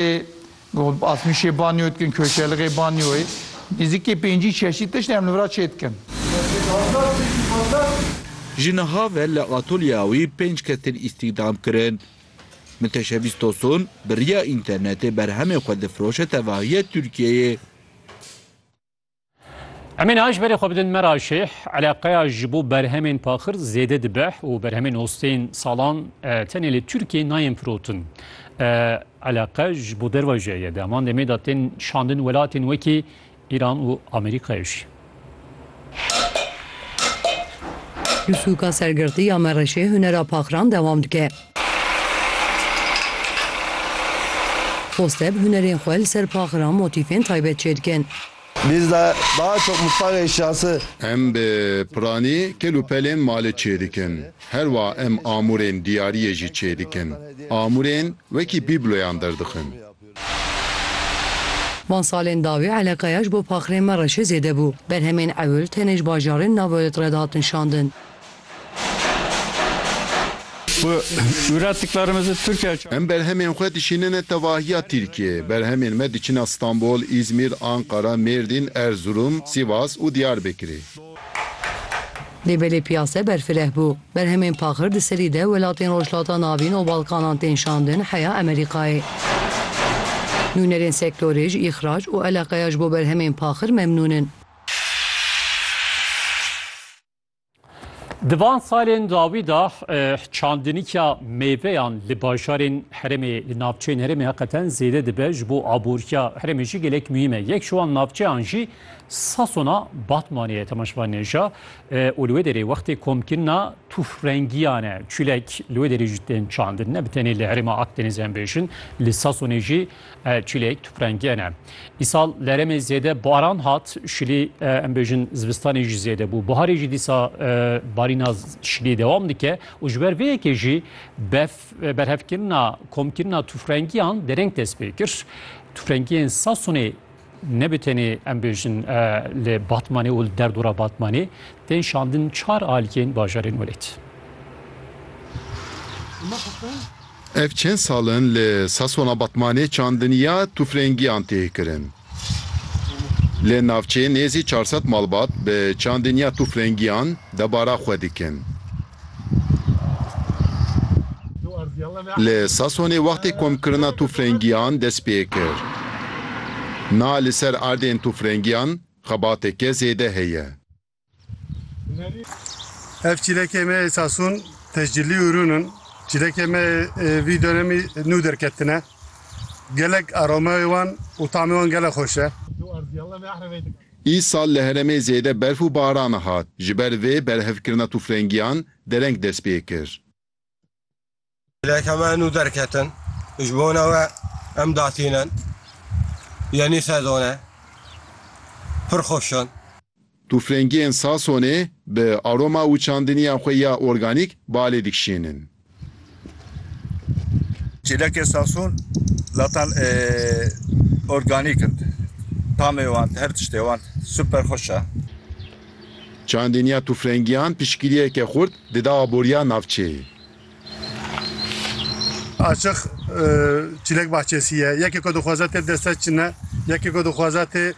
Ê Asmîşê banyo dikin, Koşelixê banyoyê. Nêzîkî pêncî çeşît tişt em li vir a çê dikin. Ji niha ve li atolyeya wî pênc kes tên îstîhdam kirin. Miteşebîs Tosun bi riya înternetê berhemên xwe difiroşe tevahiya Tirkiyeyê. Em ê niha ji berê xwe bidin me ra şêh eleqeya ji bo berhemên paxir zêde dibe û berhemên ostên salan tenê li Tirkiyê nayên firotin. Eleqe ji bo derve jî heye. Di heman demê de tên şandin welatên wekî Îran û Amerîkayê jî. Li sûka sergirtiya Mereşê hunera paxiran dewam dike. Poste bi hunerên xwe li ser paxira motîfên taybet çêdikin. Biz de daha çok mutfak eşyası. Em bi piranî kel û pelên malê çêdikin. Her wa em amûrên diyariyê jî çêdikin. Amûrên wekî bîbloyan derdixin. Van salên dawî eleqeya ji bo paxirên me re çê zêde bû. Berhemên ewil tenê ji bajarên Naboyot re dihatin şandin. Em berhemên xwe dişînine tevahiya Tirkiyeyê. Berhemên me diçine Stenbol, Îzmîr, Anqara, Mêrdîn, Erzurum, Sivas û Diyarbekirê. Lê belê piyase berfireh bû. Berhemên paxir di serî de welatên Rojhilata Navîn û Balkanan tên şandin heya Emerîkayê. Nûnerên sektorê ji îxrac û eleqeya ji bo berhemên paxir memnûn in. Di van salên dawî de çandinîkya mêveyan li bajarên herêmê, li navçeyên herêmê heqeten zêde dibe. Ji bo aboriya herêmê jî gelek muhîm e. Yek ji wan navçeyan jî Sasona Batmanê ye temaşvan nêja û li wê derê wextê komkirina tûfrengiyan e. Çûlek li wê derê jî tên çandin. Ne bi tenê li herêma Akdenizê em bêjin, li Sasonê jî çûlek tûfrengiyan ne. Îsal li herêmê zêde baran hat, şilî em bêjin zivistanê jî zêde bû. Biharê jî dîsa barîna şilî dewam dike û ji ber vê yekê jî bef berhevkirina komkirina tûfrengiyan dereng dest pê kir. Tûfrengiyên Sasonê Nebê tenê em bêjin li Batmanê û li derdora Batmanê tên şandin çar aliyên bajarên welêt. Ev çend sal in li Sasona Batmanê çandiniya tûfrengiyan tê kirin. Li navçeyê nêzî çar sed malbat bi çandiniya tûfrengiyan debara xwe dikin. Li Sasonê wextê komkirina tûfrengiyan dest pê kir. Na li ser erdên tûfrengiyan xebateke zêde heye. Ev çîlekê me yê Sason tescilî û rûn in. Çîlekê me yê vî donemî nû derketine. Gelek aromeyê wan û tamê wan gelek xweş e. Îsal li herêmê zêde berf û baran hat, ji ber vê berhevkirina tûfrengiyan dereng dest pê kir. Leke me nû derketin, ji bona we em datînin, yenî sezon e, pir xweş in. Tûfrengiyên Sasonê bi aroma û çandiniya xwe ya organîk balê dikişînin. Çêlekên Sason zatan organîk in. Tamê wan, her tiştê wan super xweş e. Çandîniya tûfrengiyan piştgiriyeke xurt dida aboriya navçeyê. Açiq çîlek bahçesî ye. Yekê ku dixwaze tê bi dest ve çin e. Yekê ku dixwaze tê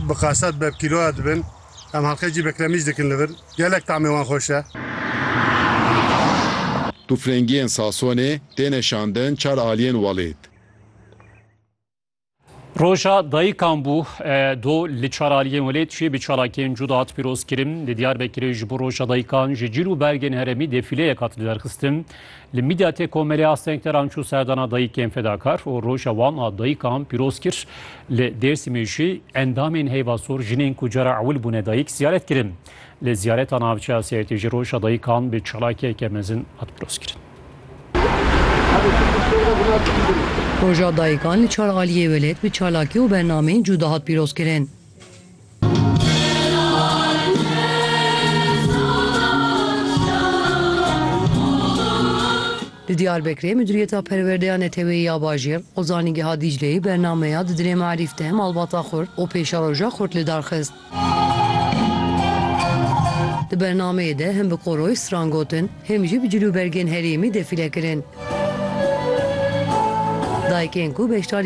bi qasad be, bi kîloya dibin. Em halqeyekî bekremîj dikin li vir. Gelek tamê wan xweş e. Tûfrengiyên Sasonê têne şandin çar aliyên welêt. Roja dayikan bû do li çar aliyên welêt jî bi çalakiyên cuda hat pîrozkirin. Li Diyarbekirê ji bo Roja Dayikan ji cîl û bergên heremî defîleyek hat lidarxistin. Li Midyatê Komelê a Sengteran çû serdana dayikên fedakar û roja wan a dayikan pîroz kir. Li Dêrsimê jî endamên Heyva Sor jinên ku cara ewil bûne dayik ziyaret kirin. Li ziyareta navçeya Sêrtê jî roja dayikan bi çalakiyeke mezin hat pirozkirin. Roja dayikan li çar aliyê welêt bi çalakî û bernameyên cûda hat pîrozkirin. Li Diyarbekirê Mudîriyeta Perwerdeya Neteweyî ya Bajêr û Zanîngeha Dîcleyê bernameya Di Dilê Me'rîf de malbata xurt û pêşeroja xurt lidarxist. Di bernameyê de hem bi koroy stran gotin, hem jî bi cilûbergên herêmî defîle kirin. Dayikên ku beşdarî